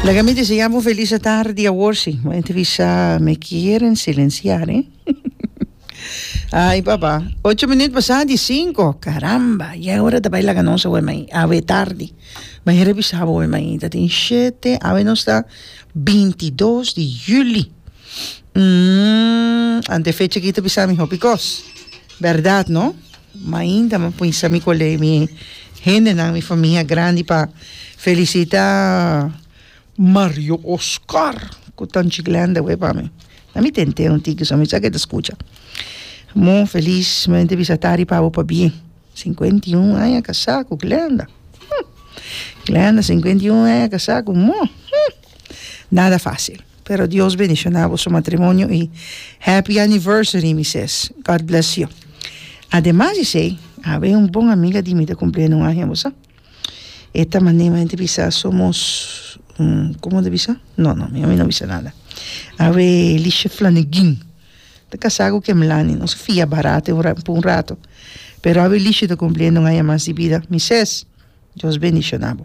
Laga mi desea bo felis e tardi awor si. Bo a entrevista me kieren silenciar eh. Ay papa. Ocho minuut basa di cinco. Caramba ya e ora ta bay laga nos awor mei. Awe tardi. Bay revisa bo awor mei. Ta tin shete. Awe nos ta bintidos di juli. Ante fecha aki ta bisa mi hopi kos. Berdad no? Mainta mi a pinsa mi colei mi hendenan mi famia grandi pa felicita Mario Oscar cu ta Chiclenda awee pa mi na mi tente un tiki so mi sa ke ta scucha mo feliz mi mente bisa tari pa bo pa bien cincuenta y un aña casa cu Glenda hm Glenda cincuenta y un aña casa cu mo hm nada facil. Pero Dios bendiciona boso matrimonio y happy anniversary mises God bless you ademas di esey awe un bon amiga di mi ta cumpli aña un aña bosa e ta mane mi ta bisa somos como ta bisa no no mi no bisa nada awe Lisha Flaniguin ta casa cu ken Melani nos a fia barat por un rato pero awe Lisha ta cumpli aña un aña mas di bida mises Dios bendiciona bo.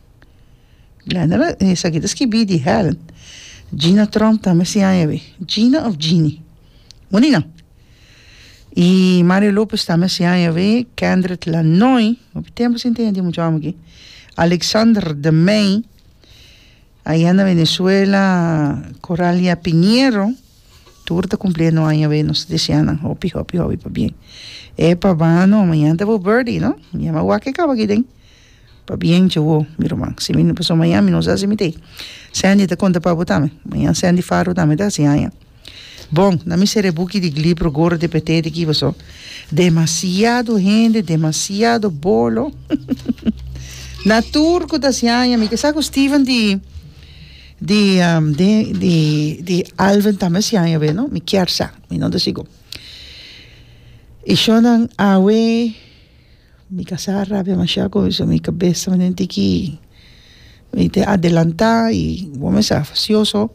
Esaki ta skibi di hel Gina Trump tambe si aña awe Gina of Jeanny Monie nan y Mario Lopez tambe si aña awe Kendrick Lanoy hopi tempo sin tin e tin muchu amo aki Alexander de May ayan na Venezuela Coralia Piñero tur ta cumpliendo aña awe nos ta desea nan hopi hopi hopi pabien epa bano mañan ta bo birthday no mi a wak e caba aki den Pabien dje awo, mi ruman, si mi no paso maña, mi no sa si mi ta ei. Sandy ta konta pa bo tambe. Mañan Sandy Faro tambe ta hasi aña. Bon, na mi serebuki di glipro goro te pet'é di ki paso. Demasiado hende, demasiado bolo, huhuhuhu. Na tur ku ta hasi aña, mi ke sa ku Steven di, di, di, di, di Alvin tambe hasi aña awe, no? Mi kier sa. Mi no ta sigur. I shornan awe. Mi ta sa rabia masha cu eso mi cabeza mi tin ki mi te adelanta y bo me sa facioso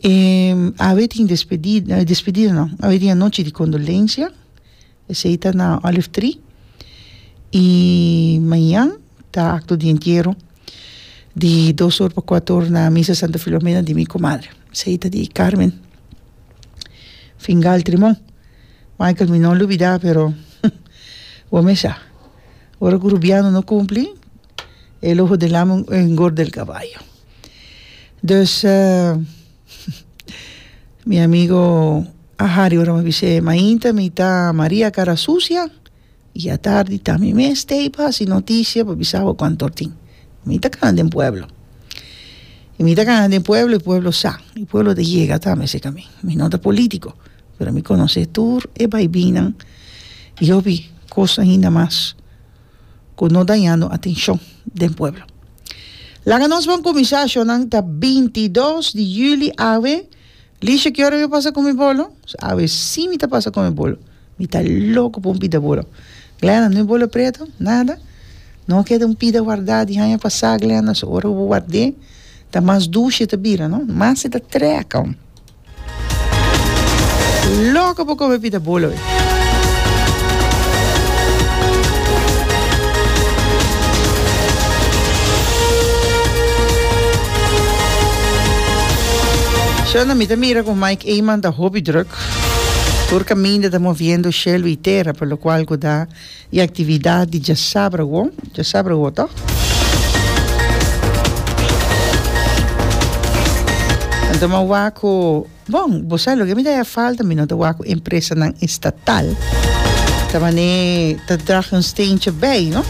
y awe tin despedida awe despedida no awe tin anochi di condolencia esey ta na olive tree y mañan ta acto di entiero di dos or pa cuato or na misa santa filomena di mi comadre esey ta di carmen Fingal Trimon Michael mi no lo bida pero bo me sa ora ku Rubiano no kumpli e lo hodelami un engorde el kabayo dus mi amigo a Hari ora mi a bis'é mainta mi ta Maria Karasusia Y atardi ta mi mes te a hasi noticia pa bisa bo cuanto hor tin. Mi ta cana den pueblo. Y mi ta cana den pueblo, y pueblo sa. Y pueblo ta yega ta mi a seca mi. Mi no ta politico, pero mi conoce tur e bay binan. Y hopi cos ainda mas cu no dañando atencion den pueblo. Laga nos ban cuminsa. Ashonan ta bintidos di juli awe. Lisha, Kiora mi pasa ku mi bolo? Awe si mi ta pasa ku mi bolo. Mi ta loko pa un pida bolo. Glenda, No e bolo pretu? Nada. No a keda un pida wardá di haña pasá, Glenda. So ora ku bo ward'é ta mas dushi e ta bira, no? Mas e ta trèk. Loko pa kome pida bolo. Shonda, mi ta mira cu Mike Eman ta hopi druk. Tur caminda ta moviendo cielo y tera, por lo cual cu ta y actividad di djasabra wo, djasabra wo toch? Toma wak cu Bon, bo sa loke mi ta hèf falta, mi no ta wak ku empresanan estatal ta manera ta drag un steentje bèi, no?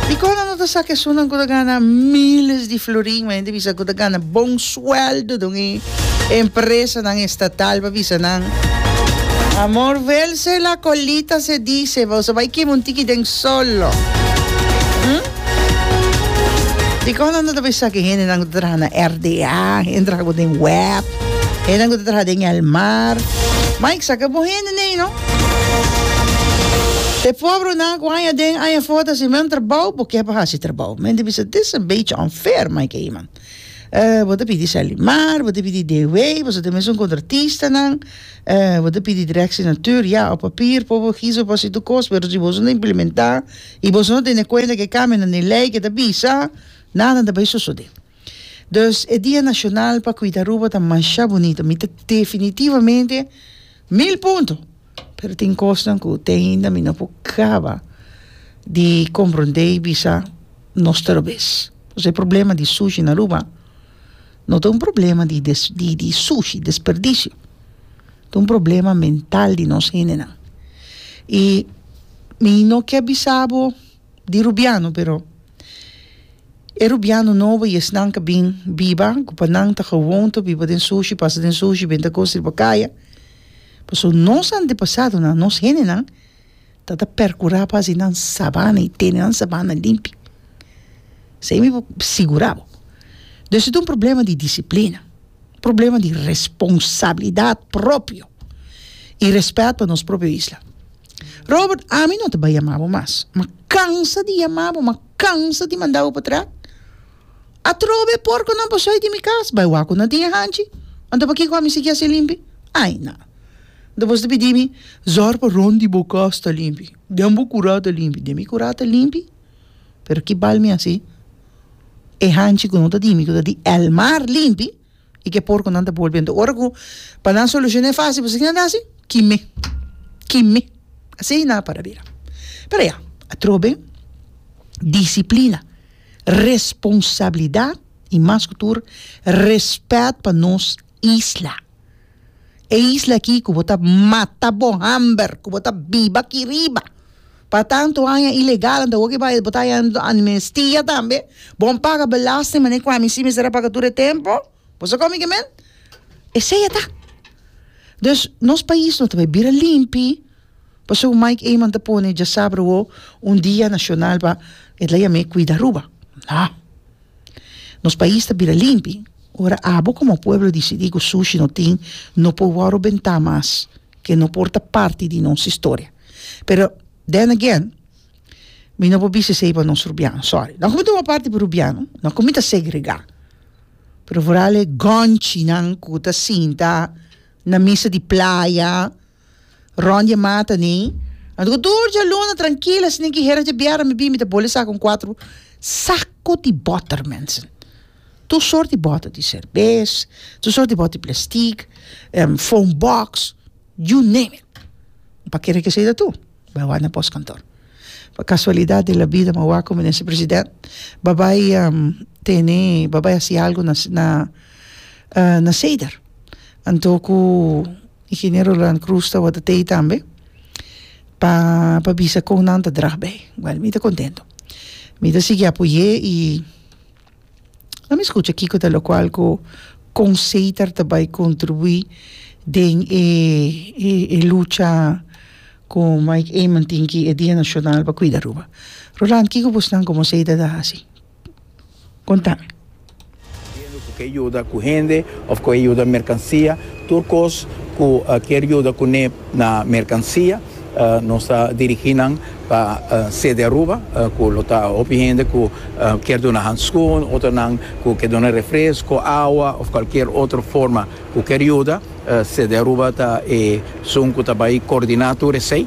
Dikon nan no ta sak esunnan ku ta gana míles di florin? Bai hende bisa ku ta gana bon suèldo den e empresanan estatal pa bisa nan, Amor, vèlse la colita se dise, bo sa bai kema un tiki den sòl lo. Dikon nan ta ta bisa ki hendenan ku ta traha na RDA, hende traha ku den web, hendenan ku ta traha den el mar. Ma i sa ke bo hende nei no. E pobrenan ku aña aden aña afo ta hasi men trabou, bo ke pa hasi trabou. Men ta bisa dis ta bechi unfair, mai ke iman. bo ta pidi Salimar, bo ta pidi Dewey, boso ta mes un kontratistanan, bo ta pidi Direkshi Natuur, ya, op papier por bo hizou, por hasi tur kos, pero si boso no implementá, I boso no tene kuenta ku e kambio nan den lei ke ta bisa nadan ta bai sosodé. Dus e dia nashonal pa kuida Aruba ta masha bunito. Mi ta definitivamente mil punto. Pero tin kosnan ku te ainda mi no por kaba di komprondé i bisa nos ta robes. Pasobra e problema di sushi na Aruba no ta un problema di des di di sushi, desperdisio. Ta un problema mental di nos hendenan. I mi no ke bisa bo di rubiano, pero e rubiano nobo i esnan ke bin biba, ku pa nan ta gewoon ta biba den sushi, pasa den sushi, benta goos riba kaya, pasobra nos antepasadonan, nos hendenan ta ta percura pa haci nan sabana y tene nan sabana limpi esey mi por sigura bo den si ta un problema di disciplina un problema di responsabilidad propio y respet pa nos propio isla Robert ami no ta bay yama bo mas ma cansa di yama bo ma cansa di manda bo pa tra atrobe e porconan pasobra di mi cas bay wak cu nan tin e hanchi anto pakico ami a sigui haci limpi ay na. Nta bos ta pidi mi, zòr pa rònt di bo kòs ta limpi, den bo kurá ta limpi, den mi kurá ta limpi? Pero ki bal mi hasi? E hanchi ku no ta di mi, ku ta di el mar limpi, i ku e porkunan ta bolbe. Anto ora ku pa nan solushoné fásil, bo sa kinan ta hasi? Kime, kime. Asina nan a para bira. Pero ya, atrobe disiplina, responsabilidat i mas ku tur rèspèt pa nos isla. E isla aki ku bo ta mata bo hamber, ku bo ta biba aki riba pa tantu aña ilegal nta oki bai bo ta haña amnestia tambe, bon paga belasting mané ku ami si mester a paga tur e tempo, bo sa kon mi ke men? Esei ata. Dus nos pais no ta bai bira limpi, pasobra ku Mike Eman ta pone djasabra awo un dia nashonal pa e ta yam'é kuida Aruba. No. Nos pais ta bira limpi ora abo komo pueblo disidí ku sushi no tin no por wòru bentá mas ke no por ta parti di nos historia pero then again mi no por bisa esei pa nos rubiano sòri no ku mi ta wòrdu parti di rubiano no ku mi ta segregá pero vooral e gònchinan ku ta sinta na mesa di playa Ron dje mata ni. Nan ta ku tur dje luna trankila si nin ki hera dje bièrnè mi bin mi ta bole saka un kuater sako di bòter mense. Tur sort di bòter di serbes, tur sort di bòter di plastik, fon bòks, you name it. Mi pa kere ke esei ta tur. Bai wak na pòskantor. Pa kasualidat di la bida mi a wak ku minister president ba bai tene, ba bai hasi algu na na seder. Anto ku Ingeniero Roland Cruz tabata tei tambe pa pa bisa kon nan ta drag bei wèl mi ta kontento mi ta sigui apoy'é i lo mi skucha kiko ta lokual ku kon Seitar ta bai kontribuí den e e lucha ku Mike Eman tin ki e dia nashonal pa kuida Aruba Roland kiko bosnan komo Seitar ta hasi. konta. Biendo ku ke yuda ku hende òf ku e yuda merkansia, tur kos ku kier yuda kuné na merkansia, nos ta dirigí nan pa sede Aruba, ku lo ta hopi hende ku kier duna hanskun, otronan ku ke duna refresko, awa òf kualkier otro forma ku kier yuda. Sede Aruba ta e sun ku ta bai kordiná tur esei.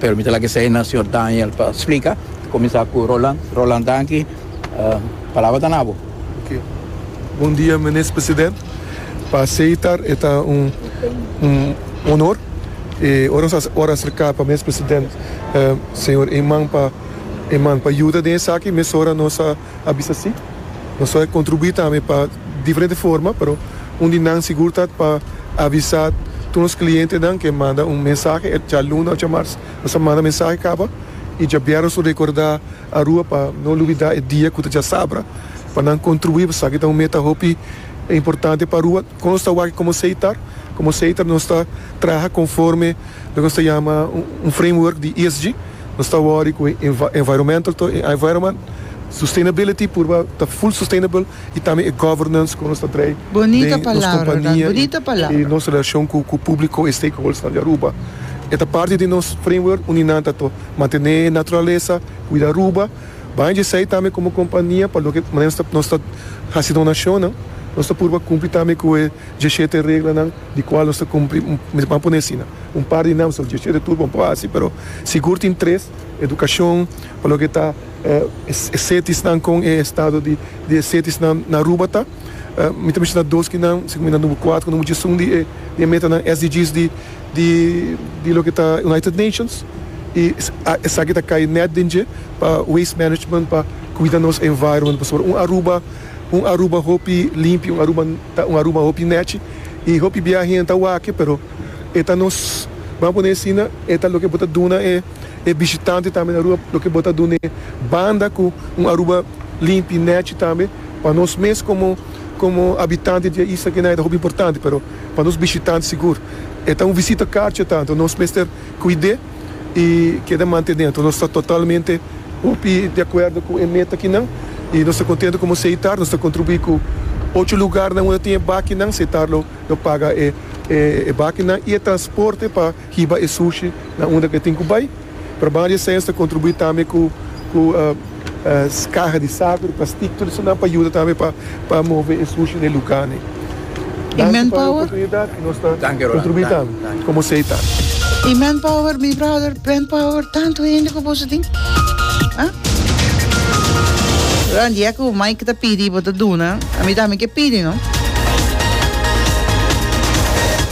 Permite la ke seña señor Daniel pa splika. Kuminsá ku Roland. Roland danki. Palabra ta na bo. Ok. Bon dia Minis President. Pa Seitar e ta un onor. E ora nos a ora aserká pa Minis President señor Eman pa Eman pa yuda den esaki mesora nos a. a bisa si. Nos a kontribuí tambe pa diferente forma, pero un di nan sigur ta pa avisá tur nos klientenan ku e manda un mensahe e djaluna òf djamars. Nos a manda mensahe kaba i djabièrnè nos a rekordá Arua pa no lubidá e dia ku ta djasabra pa nan kontribuí pasobra esaki ta un meta hopi importante pa Arua. Kon nos ta wak komo Seitar? Komo Seitar nos ta traha konforme loke nos ta yama un framework di ESG. Nos ta worry cu e environmental to e environment sustainability purba ta full sustainable y tambe e governance cu nos ta trae den nos compania y nos relacion cu publico y stakeholdersnan di Aruba. E ta parti di nos framework uni nan ta to mantene naturalesa, cuida Aruba, baña dje esey tambe como compania pa loke manera nos ta haci donacionnan nos ta purba cumpli tambe cu e dje shete reglanan di cual nos ta cumpli, mi ta pone asina. un par di nèmster dje chede tur bon por hasi pero sigur tin tres edukashon pa loke ta e setisnan kon e estado di di e setisnan na Aruba ta mi ta mishana dos ki nan si ku mi nan number kuater ku number djesun di e di e metanan SDGs di di di loke ta United Nations i esaki ta kai nèt den dje pa waste management pa kuida nos environment pasobra un Aruba un Aruba hopi limpi un Aruba ta un Aruba hopi nèchi i hopi bia hende ta wak e pero. e ta nos, ba'A pone asina, e ta loke bo ta duna e e bishitante tambe na rua, loke bo ta dun'e banda ku un Aruba limpi, nechi tambe. Pa nos mes komo komo habitante di e isla kina e ta hopi importante, pero pa nos bishitante sigur e ta un visita karchi ta, anto nos mester kuid'é i keda mantené. Anto nos ta totalmente hopi di akuerdo ku e meta kinan i nos ta kontentu komo Seitar nos ta kontribuí ku ocho lugarnan unda tin e bakinan, Seitar lo. Lo paga e e bakinan y e transporte pa hiba e sushi na unda cu e tin cu bay. Trabaha di esens ta contribui tambe cu cu caha di saco, di plastic, tur esanan pa yuda tambe pa pa move e sushi na e lugarnan. Danki pa e oportunidad y nos ta contribui tambe. Como sei ta. Y manpower mi brother manpower tanto hende cu boso tin ah. Ran dia cu Mike ta pidi bo ta duna a mi tambe ke pidi no.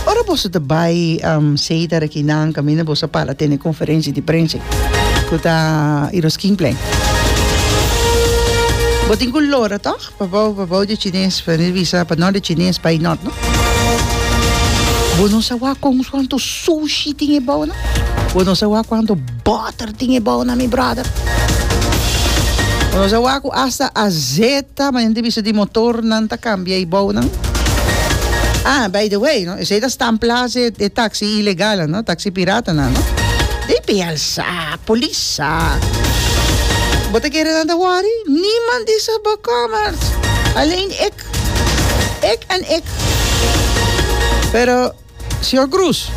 Ora boso ta bay um sei ta rekinan caminda boso a para tene conferencia di prensa cu ta Iroskingplein. Bo tin cu lora toch. Pabou pabou di chines pa ni bisa pa no di chines bai not no. Bo no sa wak con cuanto sushi tin e bou na. Bo no sa wak cuanto butter tin e bou na mi brother. Bo no sa wak cu hasta azeta manera di bisa di motor nan ta cambia e bou nan. Ah by the way no esey ta stampla e taxi ilegal nan no taxi pirata nan no. Dei pei alsa. a polis. Bo ta kere nan ta wòri? Niman di sa bo kòmers. Alleen ik. Ik en ik. Pero, señor Cruz,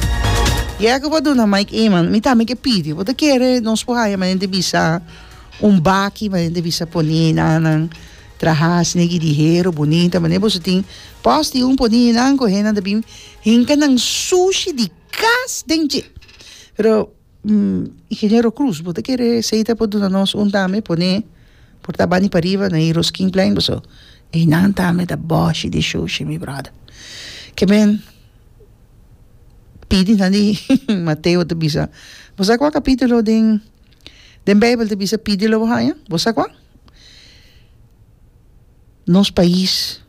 ya ku bo a duna Mike Eman, mi tambe ke pidi. Bo ta kere nos por haña manera bisa un baki, manera di bisa poni henannan traha snegi di hero bunita, manera boso tin pòs di un poni henan ku henan ta bin hinka nan sushi di kas den dje. Pero. Ingeniero Cruz bo ta kere seita por duna nos un tambe pone por ta bandi pariba na Heroes King Plein boso einan tambe ta boshi di shushi mi brother ke men pidi nan di Mateo ta bisa bo sa kua kapitulo den den beibel ta bisa pidi lo bo haña bo sa kua. Nos pais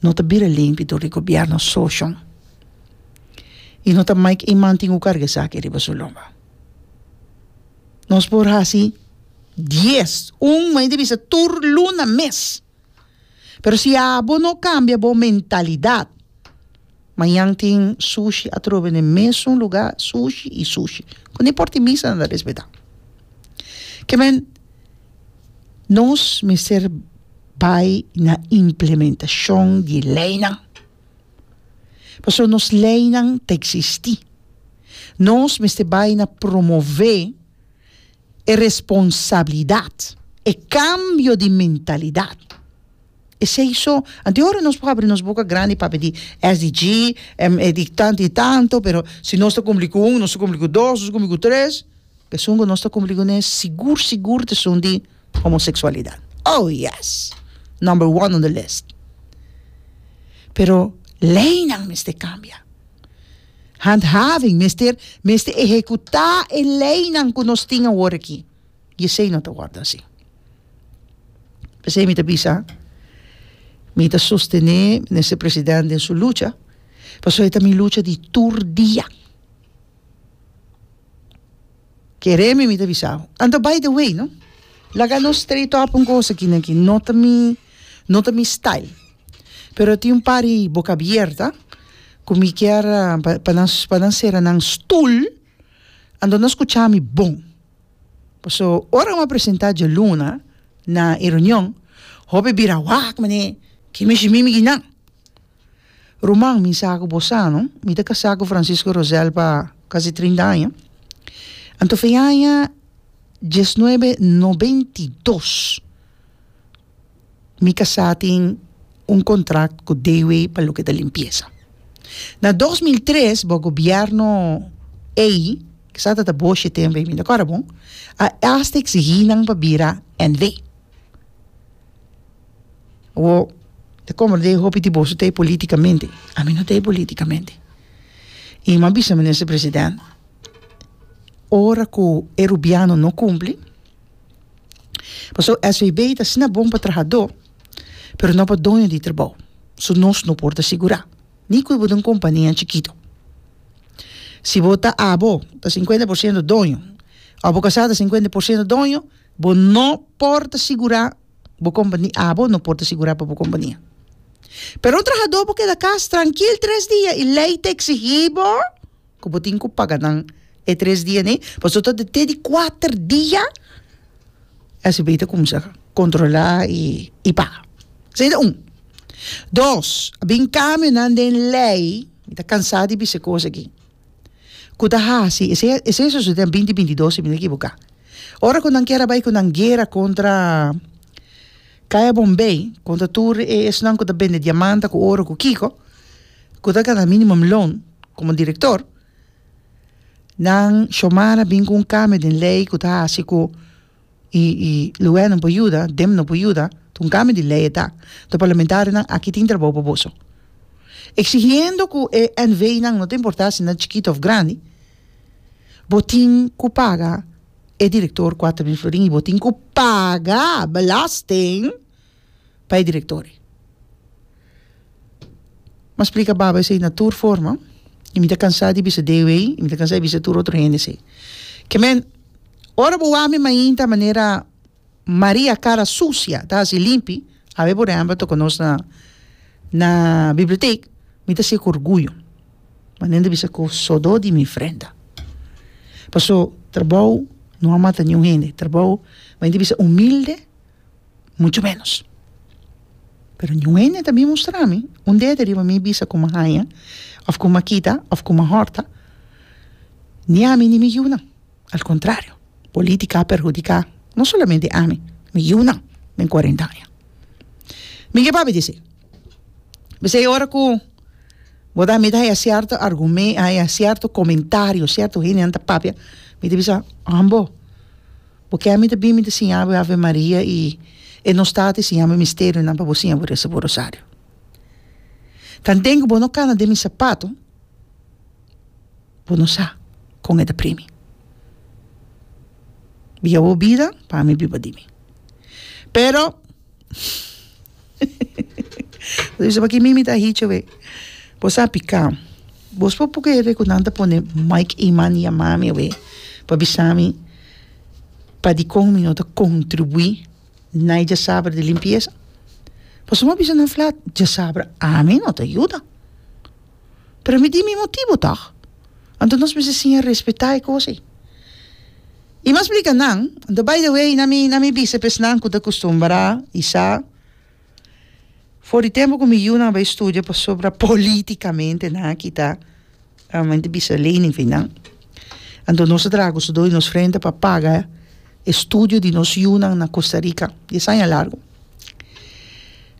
no ta bira limpi dor di gobierno sochon y no ta make e man tin cu carga esaki riba su lomba. Nos por haci dies, un mei di bisa tur luna mes pero si abo no cambia bo mentalidad. Mañan tin sushi atrobe n'e mesun lugá, sushi i sushi. Cu ni por tin misa nan ta respetá. Ke men, nos mester bai na implementacion di leinan. Pasobra nos leinan ta existi. Nos mester bai na promove E responsabilidat, e kambio di mentalidat. Esei so, anto e ora nos por habri nos boka grandi pa habri di SDG, em e di tanto y tanto, pero si nos ta cumpli cu un, nos ta cumpli cu dos, nos ta cumpli cu tres, t'esun cu nos ta cumpli cu nes, sigur, sigur t'esun di homosexualidad. Oh yes! Number one on the list. Pero leynan mester cambia. Handhaving mester mester ehekutá e leinan ku nos tin awor aki i esei no ta wòrdu asi. P'esei mi ta bisa, mi ta sostené Minister President den su lucha pasobra e ta mi lucha di tur dia. Kere mi mi ta bisau. Anto by the way no, laga nos straight up un kos aki no ta mi no ta mi style. Pero tin un par di boca abierta cu mi kier pa nan pa nan cera nan stoel ando nan scucha mi bon pasobra ora bo a presenta dje luna na e reunion hopi bira wak mane ki mishi mimi ki nan ruman mi sa cu bo sa no mi ta casa cu Francisco Rosel pa casi trinta aña anto fe aña diesnuebe nobentidos mi casá tin un contract cu Dewey pa loke ta limpieza. Na dos mil tres bo gobierno ey, kisa ta ta boshi tem ey, mi no acorda bon, a hasta exigi nan pa bira NW. Wo ta comro den hopi di boso t'ey politicamente, a mi no t'ey politicamente. Y mi a bisa minister president, ora cu e rubiano no cumpli, Pasobra SVB ta asina bon pa trahadó pero no pa doño di trabou. So nos no por ta sigurá ni kue bo ta un kompania chikito. Si bo ta abo ta sinkuenta por siento doño òf bo kasá ta sinkuenta por siento doño bo no por ta sigurá bo kompania abo no por ta sigurá pa bo kompania. Pero un trahadó por keda kas trankil tres dia i lei ta eksigí bo. Ku bo tin ku paga nan e tres dia nei pasobra ta te di kuater dia esei bei ta kuminsá kontrolá i paga esei ta un dos a bin kambionan den lei mi ta kansá di bis'e kos aki ku ta hasi esei esei a sosodé den binti binti dos si mi no ekiboká ora ku nan kier a bai ku nan guera kontra kaya bombei kontra tur e esnan ku ta bende diamanta ku oro ku kiko ku ta gana minimum loan. Komo direktor, nan Shomara bin ku un kambio den lei ku ta hasi ku e e luè no por yuda, dem no por yuda, ta un kambio di lei e ta. Enton parlamentarionan aki tin trabou pa boso. Eksigiendo ku e NVnan, no ta importá si nan chikito òf grandi, bo tin ku paga e direktor Cuatro Mil Florin i bo tin ku paga belasting pa e direktor ei. M'a splika baba esei na tur forma i mi ta kansá di bisa Deo ei i mi ta kansá di bisa tur otro hende esei. Ke men, ora bo wak mi mainta manera Maria kara susia ta hasi limpi, a be por ehèmpel toko nos na na bibliotek, mi ta siek orguyo manera mi ta bisa ku so do di mi frenda. Paso, trabou no a mata niun hende, trabou mainta bisa humilde mucho menos. Pero ni un hende ta bin mustra mi un dedo riba mi bisa ku mi a haña òf ku mi a kita òf ku mi a hòrta, ni ami ni mi yunan. Al kontrario, polítika a perhudiká no solamente ami, mi yunan den kuarenta aña. Mi ke papia di esei? P'esei ora ku bo ta mira haya sierto argumen, haya sierto komentario, sierto hendenan ta papia, mi ta bisa, ambo, Bo ke mi ta bin mi ta siña bo e Ave Maria i e no sta ta siña bo misterionan pa bo siña bo resa bo rosario. Tan den ku bo no kana den mi sapato bo no sa kon e ta pri mi. Biba bo bida pa mi biba di mi. Pero Luisa, pa ki mi mi ta hichi awe? Bo sa pika. Bos por puka hende ku nan ta pone Mike Eman di yama mi awe pa bisa mi pa dikon mi no ta kontribuí na e diasabra di limpiesa? Pasobra mi a bisa nan flat, diasabra ami no ta yuda. pero mi di mi motibu tòg, anto nos mester siña respetá e kos ei. I mas blica nan, anto by the way na mi na mi bisa p'es nan cu ta custumbrá i sa for di tempo cu mi yunan a bay studia pasobra politicamente nan a kita mente bisa lening for nan, anto nos a traha cu su do di nos frente pa paga e studio di nos yunan na Costa Rica, dies aña largo.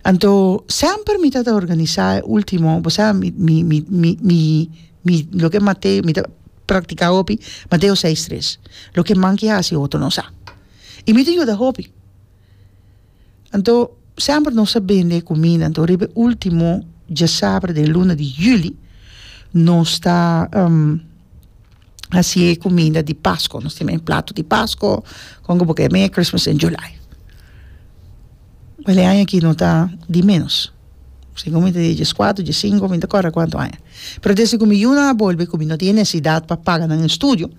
Anto semper mi ta ta organisa e ultimo bo sa mi mi mi mi mi mi loke Mateo mi ta praktika hopi Mateo seis tres loke man ke hasi otro no sa y mi ta yuda hopi anto semper nos ta bende e kumida anto riba e ultimo djasabre den luna di juli nos ta hasi e kuminda di pasko nos tin e plato di pasko kon ku bo ke mea christmas in july e aña aki no ta di menos sigur mi ta di dies kuater dies sinku mi ta kòrda kuantu aña pero desde ku mi yunan a bolbe ku mi no tin e nesedat pa paga nan e estudio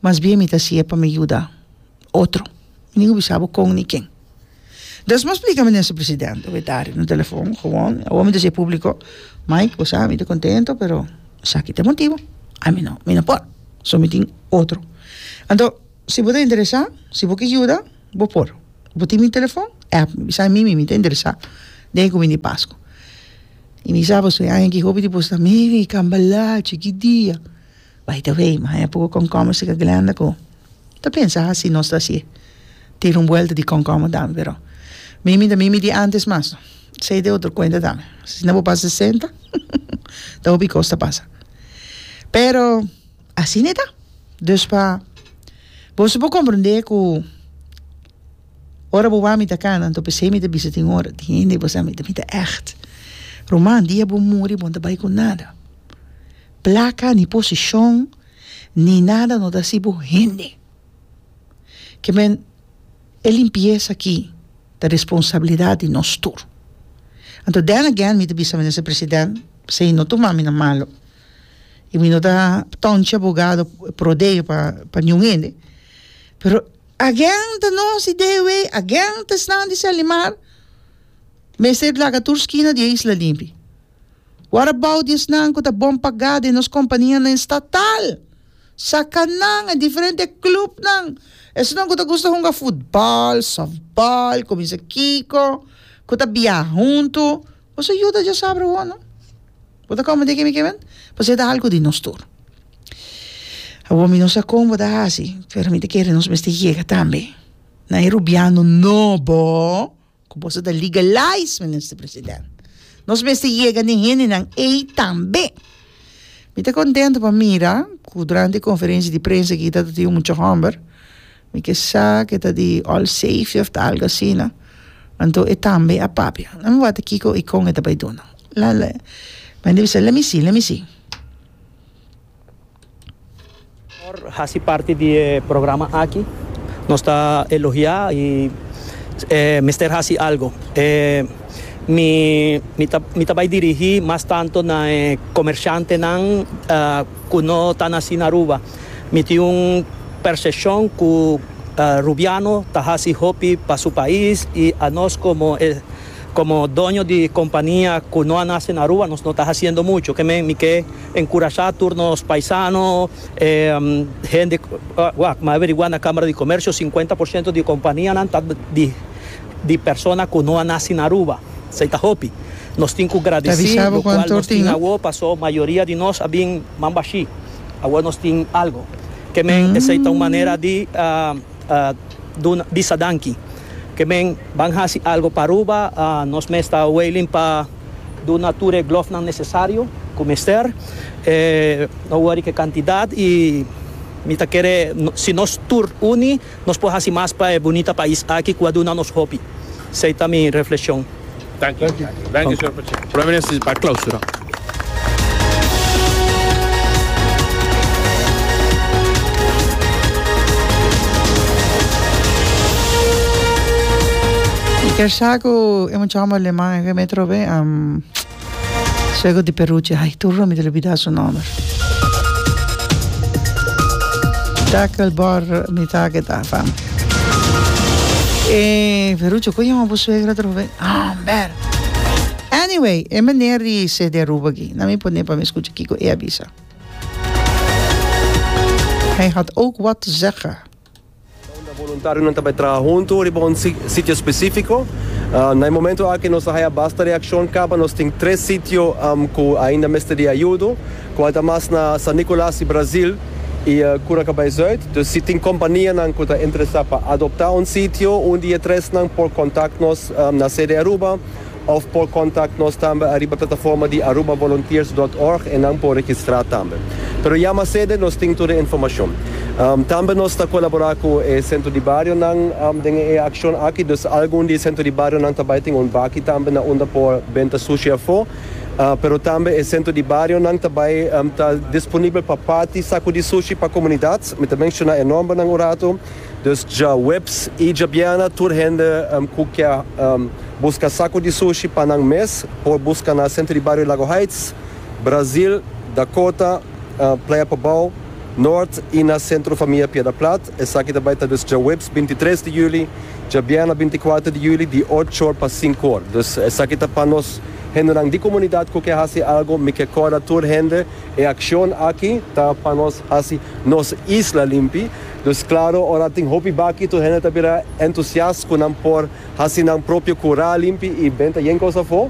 mas bien mi ta hasi'e pa mi yuda otro nin a bisa bo con ni ken despues mi a splica mi mister presidente mi ta ari na telefon gewoon awor mi ta siye publico Mike bo sa mi ta contento pero esaki ta e motibo a mi no mi no por so mi tin otro anto si bo ta interesa si bo ki yuda bo por bo tin mi telefon app mi bisa mi mi ta interesa den e cuminda di pascua y mi sa pasobra e aña aki hopi di boso ta meri cambalachi kidia bay ta wey mi haña poco comcomistica Glenda cu Ta pensa hasi nos ta si tira un buelta di con como dame pero mimi ta mimi di antes mas no esey ta otro cuenta tambe si no bo pasa sesenta ta hopi cos ta pasa pero asi ne ta dus pa boso por comprende cu ora bo wou mi ta cana anto pesey mi ta bisa tin un ora tin hende cu bo sa mi mi ta echt ruman dia bo muri bo no ta bay cu nada placa ni posicion ni nada no ta si bo hende ke men e limpiesa aki ta responsabilidat di nos tur anto then again mi ta bisa minister president pasobra e no tuma mi na malo y mi no ta tonchi abogado prodeo pa niun hende pero again ta nos di de way again ta esnan di selimar mester laga tur skina di e isla limpi. What about di esnan ku ta bon pagá den nos kompanianan estatal? Saka nan, e diferente klupnan, esnan ku ta gusta hunga futbòl, sòftbòl, kuminsa kiko, ku ta biaha huntu, nos a yuda dje sabra awor no. Bo ta kòmprende ke mi ke mende? Pasobra e ta algu di nos tur. Awor mi no sa kon bo ta hasi, pero mi ta kere nos mester yega tambe na e rubiano nobo. Cu boso ta legalize, Minister President. Nos mester yega den hendenan ey tambe. Mi ta contento pa mira cu durante e conferencia di prensa aki ta tin un mucha homber, mi ke sa ke ta di All Safety of ta algo asina, anto e tambe a papia. Lami wata kiko y con e ta bay duna. La, la, mi a bisa, let me see, let me see. Por hasi parti di e programa aki nos ta elogiá i e mester hasi algu. E mi mi ta mi ta bai dirigí mas tantu na e komershantenan ku no ta nasí na Aruba. Mi tin un perseshon ku rubiano ta hasi hopi pa su pais i anos komo e komo doño di kompania ku no a nase na Aruba nos no ta hasiendo muchu. Ke men mi ke. Enkurashá tur nos paisano, hende wak ma averigua na Kámara di Komersio, sinkuenta por siento di kompanianan ta di persona ku no a nasi na Aruba. Esei ta hopi. Nos tin ku gradisí lokual nos tin awó pasó mayoria di nos a bin mambashí. Awó nos tin algu. Ke men esei ta un manera di bisa danki. Ke men ban hasi algu pa Aruba, nos mes ta wailing pa. Duna tur e glòfnan nesesario ku mester. No wòri ku e kantidat i mi ta kere si nos tur uni nos por hasi mas pa e bunita pais aki ku a duna nos hopi. Esei ta mi refleshon. Prome minister pa klausura. Kersha ku e mucha hòmber aleman. Ke me trobe am suegro di peruchi ai tur mi ta lubida su nomer takel bor mi ta keda fam e peruchi oco yama bo suegra trobe amber anyway e meneer di cd aruba aki na mi pone pa mi scucha kico e a bisa hij had ook wat te zeggen. Unda boluntarionan ta bai traha huntu riba un sitio spesífiko. Na e momentu aki nos a haya basta reakshon kaba. Nos tin tres sitio ku ainda mester di ayudo, kual ta mas na San Nicolas i Brazil i Cura Cabay Zuid. Dus si tin kompanianan ku ta interesá pa adoptá un sitio, un di e tresnan por kontakt nos na sede Aruba. Of por contact nos tambe ariba plataforma di arubavolunteers.org e nan por registra tambe. Pero ya masede nos tin tur e informacion. Tambe nos ta colabora cu e centro di barionan den e accion aki, dus algun di e centro di barionan ta bay tin un baki tambe na unda por benta sushi afo, pero tambe e centro di barionan ta bay ta disponibel pa parti sacudi sushi pa comunidad, mi ta menciona e nombernan un rato. Dus djaweps i djabiana tur hende ku ke buska saku di sushi pa nan mes por buska na senter di bario Lago Heights, Brazil, Dakota, Playa Pobao, Noord i na Centro Famia Piedra Plat. Esaki ta bai ta dus djaweps binti tres di juli, djabiana binti kuater di juli di ocho or pa sinku or. Dus esaki ta pa nos hendenan di komunidat ku ke hasi algu. Mi ke kòrda tur hende e akshon aki ta pa nos hasi nos isla limpi. Dus claro, ora tin hopi baki tur hende ta bira entusiast cu nan por haci nan propio cura limpi y benta yen cos afo.